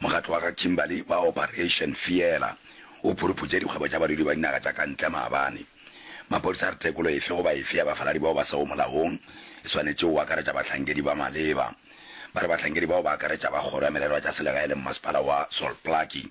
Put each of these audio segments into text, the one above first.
Mokgatlo wa ga Kimberly wa Operation Fiela o phuruputše dikgwebo tša badudi ba dinaga tša ka ntle maabane. Maphodisa a re tekolo efe goba efe ya bafaladi bao ba sego molaong e swanetše go akaretša bahlankedi ba maleba. Ba re bahlankedi bao ba akaretša ba kgoro ya merero ya tša selegae le mmasepala wa Salt Plucky.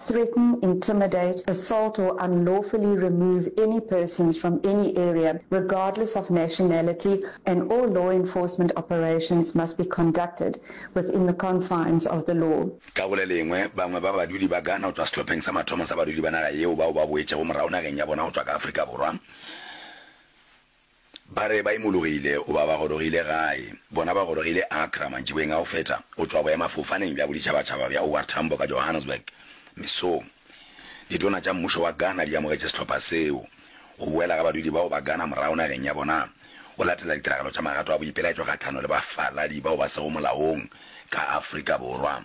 threaten, intimidate, assault or unlawfully remove any persons from any area regardless of nationality and all law enforcement operations must be conducted within the confines of the law. Ka go le lengwe, bangwe ba badudi ba Ghana go tšwa sehlopheng sa mathomo sa badudi ba naga yeo bao ba boetšego morago nageng ya bona go tšwa ka Afrika Borwa, Ba re ba imologile goba ba gorogile gae. Bona ba gorogile Accra mantšiboeng a go feta go tšwa boemafofaneng bja boditšhabatšhaba bja OR Tambo ka Johannesburg mesong. Ditona tša mmušo wa Ghana di amogetše sehlopha seo. Go boela ga badudi bao ba Ghana morago nageng ya bona go latela ditiragalo tša magato a boipelaetšo kgahlano le bafaladi bao ba sego molaong ka Afrika Borwa.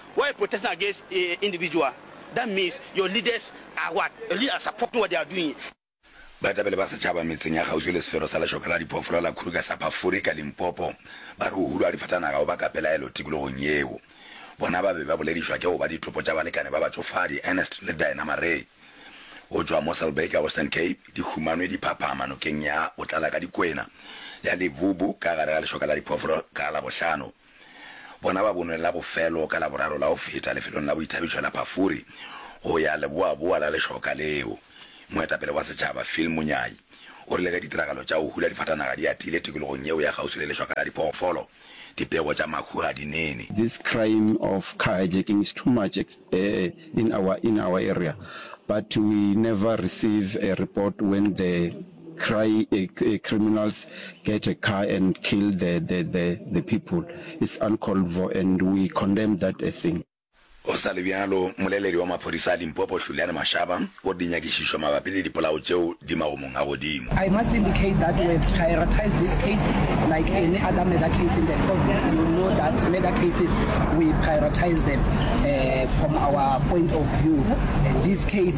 While protesting against individual, that means your leaders are what? Your leaders are supporting what they are doing. Baetapele ba setšhaba metseng ya kgauswi le sefero sa lešoka la diphoofolo la Kruger Sapafuri ka Limpopo ba re go hulwa ga difatanaga go baka pelaelo tikologong yeo. Bona ba be ba boledišwa ke go ba ditopo tša balekane ba batšofadi Ernest le Diana Maree go tšwa Mosselbaai ka Western Cape di humanwe di phaphama nokeng ya Botlala ka Dikwena ya Levubu ka gare ga lešoka la diphoofolo ka Labohlano. Bona ba bonwe la bofelo ka Laboraro la go feta lefelong la boithabišo la Pafuri go ya leboaboa la lešoka leo. Moetapele wa setšhaba, Phil Munyai, o rile ge ditiragalo tša go hula difatanaga di atile tikologong yeo ya kgauswi le lešoka la diphoofolo, dipego tša mahu ga di nene. This crime of car hijacking is too much in our in our area but we never receive a report when the. Cry a criminals get a car and kill the the the the people it's uncalled for and we condemn that a thing. Go sa le bjalo, mmoleledi wa maphodisa a Limpopo Hluliane Mashaba o re dinyakišišo mabapi le dipolao tšeo di magomong a godimo. I must indicate that we have prioritized this case like any other murder case in the province. You know that murder cases we prioritize them uh, from our point of view. And this case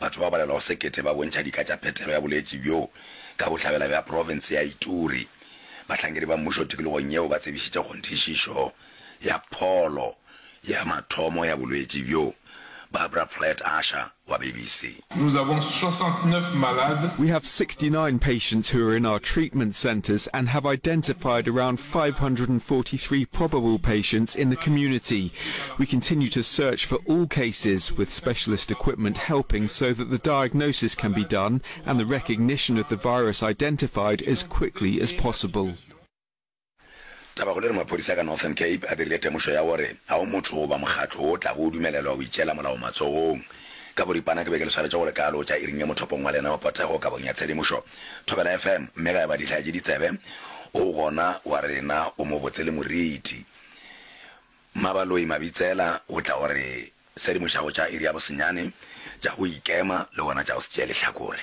Batho ba ba balelwago sekete ba bontšha dika tša phetelo ya boletši bjo ka bohlabela bja profense ya Ituri. Bahlankedi ba mmušo tikologong yeo ba tsebišitše kgonthišišo ya pholo ya mathomo ya bolwetši bjo. Barbara Platt Usher wa BBC. Nous avons 69 malades. We have sixty nine patients who are in our treatment centres and have identified around five hundred and forty three probable patients in the community. We continue to search for all cases, with specialist equipment helping so that the diagnosis can be done and the recognition of the virus identified as quickly as possible. Tabakgolo e re maphodisa ka Northern Cape a dirile temošo ya gore ga go motho goba mokgatlo wo o tlago o dumelelwa go itšeela molao matsogong. Ka boripana ke be ke le swaretše go le kalo tša iring ye mothopong wa lenao Potego kabong ya tshedimošo. Thobela FM, mme ga eba dihlaya tše ditsebe, o gona wa rena, o mobotse le moriti. Mmabaloi Mabitsela o tla o re sedimošago tša iri ya bosenyane, tša go ikema le gona tša go se tšee lehlakore.